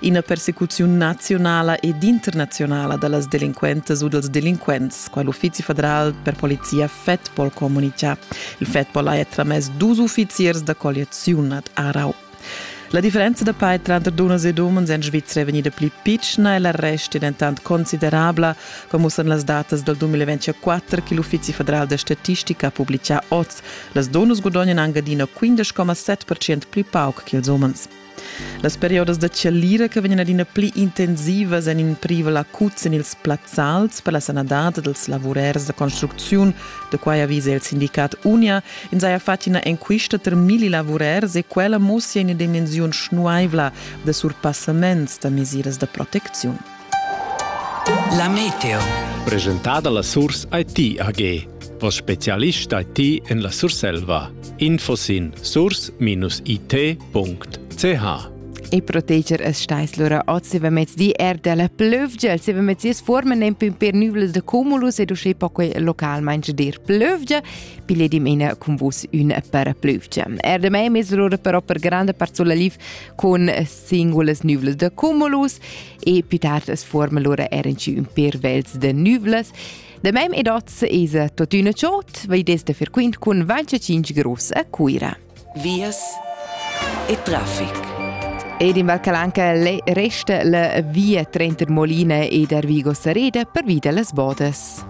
ina persecuziun naziunala ed internazionala da las delinquentas u dels delinquents, qua l'Uffizi federal per polizia FEDPOL comunica. Il FEDPOL ha tramess dus uffiziers da colliaziun ad Arau. La differenza da pair tranter dunnas ed umens en Svizra è vegnida pli pitschna e l'arrest è dentant considerabla, come san las datas dal 2024 che l'Uffizi federal da statistica ha publicà oz. Las dunnas gudagnano anche adina 15,7% pli pauc che ils umens. Las periodas da chalira che vegnan adina pli intensivas èn in privel acut en ils plazzals per la sanadad dals lavurers da construcziun, da quai avisa il sindicat Unia. Ins haja fatg ina enquista tar milli lavurers e quella mussia ina dimensiun schnuaivla da surpassaments da mesiras da protecziun. La meteo. Presentada la Surs IT AG. Vos specialist IT en la Surselva. Info sin surs-it.ch e proteger es stais lura oz va mezz di er della plövgia se va mezz is forma nem pin per nüvles de cumulus ed usce po quei localmain dir plövgia pile dimena con vus un per plövgia er de me mezz lura però per grande parzola lif con singulas nüvlas da cumulus e più tard as forma lura er inci ün per vels da nüvlas. Da mem ed oz es tuottüna ciot, vai desta frequent cun Vancia 5 Gross a Cuira. Vias e traffic. Ed in Val Calanca resta la via Trenter Molina ed Arvigo Sareda per via las Bodas.